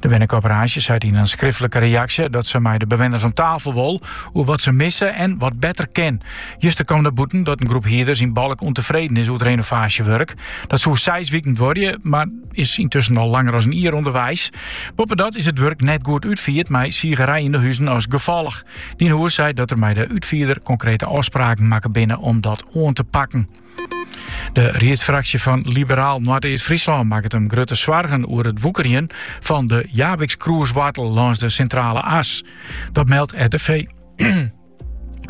De wennecoöperaasje seit yn in skriftlike reaksje dat se mei de bewenners om tafel wol oer wat se misse en wat better kin. Juster kwam der bûten dat in groep hierders yn Balk ûntefreden is oer it renovaasjewurk. Dat soe seis wiken duorje, mar is yntusken al langer as in jier ûnderweis. Boppedat is it wurk net goed útfierd mei sigerij yn de huzen as gefolch. Dynhus seit dat der mei de útfierder konkrete ôfspraken makke binne om dat oan te pakken. De riedsfraksje fan Liberaal Noardeast-Fryslân makket him grutte soargen oer it woekerjen fan de Jabikskroeswoartel lâns de Sintrale As. Dat meldt RTV,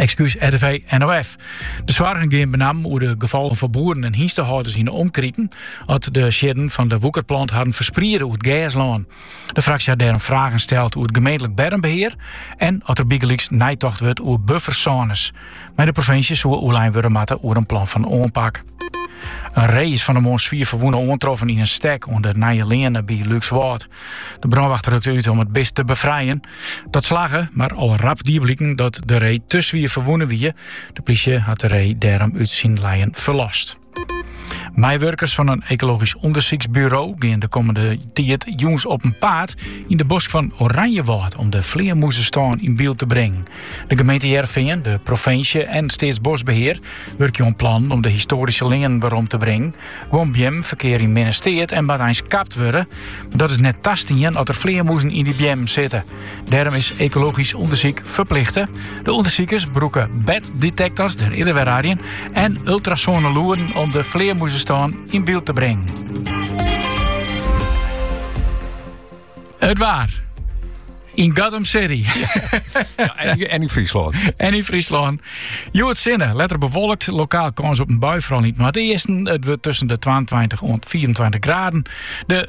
ekskús RTV NOF. De soargen gean benammen oer de gefolgen foar boeren en hynstehâlders yn de omkriten, at de siedden fan de woekerplant harren ferspriede oer it gerslân. De fraksje hat dêrom fragen steld oer it gemeentlik bermbehear en oft der bygelyks neitocht wurdt oer buffersônes. Mei de provinsje soe oerlein wurde moatte oer in plan fan oanpak. In ree is fan 'e moarn swier ferwûne oantroffen yn in stek oan de Nije Leane by Lúkswâld. De brânwacht rukte út om it bist te befrijen. Dat slagge, mar al rap die bliken dat de ree te swier ferwûne wie. De plysje hat de ree dêrom út syn lijen ferlost. Meiwurkers fan in ekologysk ûndersyksburo gean de kommende tiid jûns op en paad yn de bosk fan Oranjewâld om de flearmûzestân yn byld te bringen. De gemeente Hearrenfean, de provinsje en Steatsboskbehear wurkje oan plannen om de histoaryske leanen werom te bringen. Guon beammen ferkeare yn minne steat en moatte eins kapt wurde. Dat is net tastien as der flearmûzen yn dy beammen sitte. Dêrom is ekologysk ûndersyk ferplichte. De ûndersikers brûke batdetektors, der eerder wer raadjen, en ultrasoane lûden om de flearmûzestân yn byld te bringen. It waar. Yn Gotham City. Ja, en, yn Fryslân. En yn Fryslân. Hjoed sinne, letter bewolkt, lokaal kâns op in bui, foaral yn it noardeasten. It wurdt tusken de 22 en 24 graden. De